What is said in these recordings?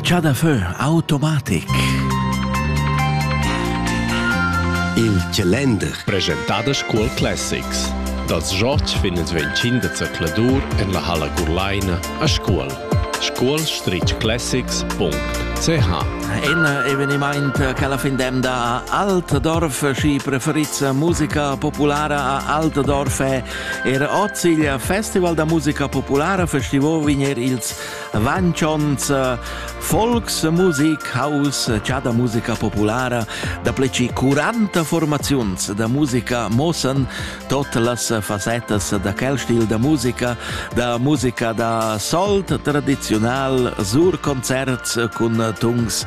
Chadafö automatic. Il Chalender. Presentadas Cool Classics. Dals George fin ils 25 da zercladur en la halla Gurlaina a Scuol. scuol-classics.ch Un eveniment che alla fin dem da Altdorf, schi preferizza musica populara a Altdorf è Era oz il Festival da musica populara festivo vegner ils Vanchons Volksmusik Haus già da musica populara da pleci 40 formaziuns da musica mossen tot las fasettas da quel stil da musica, da musica da solt tradizional, sur concerts cun tungs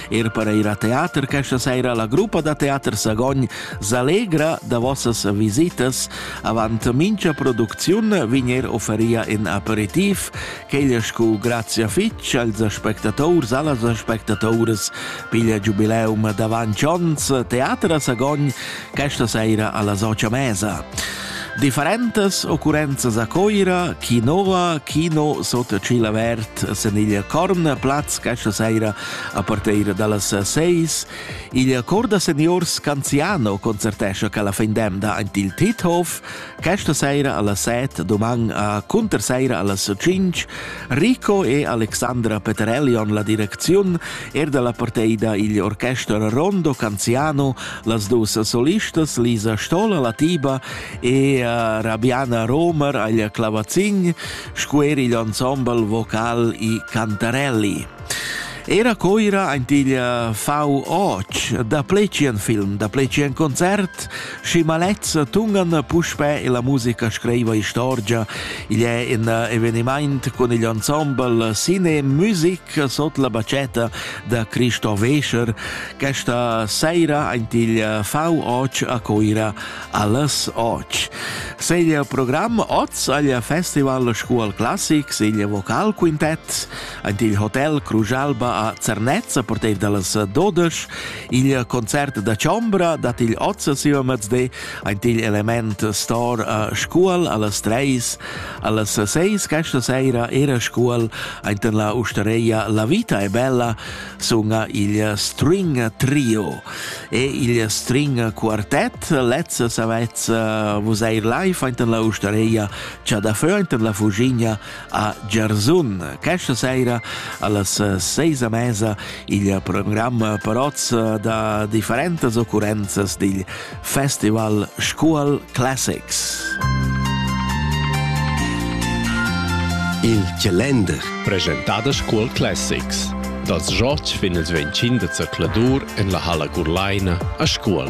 Er per ir a teater questa saira la gruppa da teater Sagogn s'allegra da vossas visitas. Avant mincha producziun vegner offeria in aperitif, quegl scu grazia fitg als aspectators, allas aspectatores piglia giubileum davant ons Teater a Sagogn questa saira alla Socia Mesa. Differentas occurrenzas a Coira, Chi Nova, Kino sotto Cilavert, Seniglia Corn, Platz questa saira A parteira dallas seis igl cor da seniors Canziano concertescha quella fin d'emda aint il Tithof questa seira alla set, doman a cunterseira allas cinc Rico e Alexandra Peterellion la direcziun er dalla parteida igl orchester Rondo Canziano, las dus solistas Lisa Stolla la tiba e uh, Rabiana Romer agl clavazin, scuer igl ensemble vocal i Cantarelli. Era Coira ein igl fau och da plecian film, da plecian concert, schi malezza tungan puspè e la musica scriva istorgia. Igl è in eveniment con igl ensemble Cine Music sot la bacetta da Cristo Wecher. Questa sera ein igl fau och a Coira alles och. Se il programm oz agl Festival Scuol Classics, igl vocal quintet, Ed il hotel Crujalba a Zernezza portev dallas dodesch. Il concert da Chombra dat igl ozza siu mezdi ant igl element stor a Scuol allas treis. Allas seis questa seira era Scuol ant la ustareia La vita è bella sunga il String Trio. E il String Quartet lez savez vus eir live ant la ustareia Chadafö ant la Fugigna a Giarzun. Questa sera allas seis a mesa il programm paroz da differentas occurrenzas digl Festival Scuol Classics. Il calender presentà da Scuol Classics dals George fin als 25 da zercladur en la Halla Gurlaina a Scuol.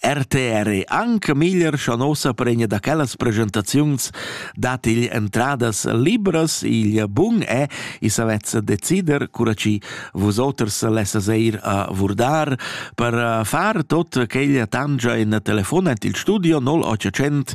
RTR è anche meglier scha nossa pregna da quellas presentaziuns dat igl entradas libras, igl bun è, i savetz decider, cura ci vus oters lessas eir a vurdar, per far tot quegl tangia in telefonet il studio 0800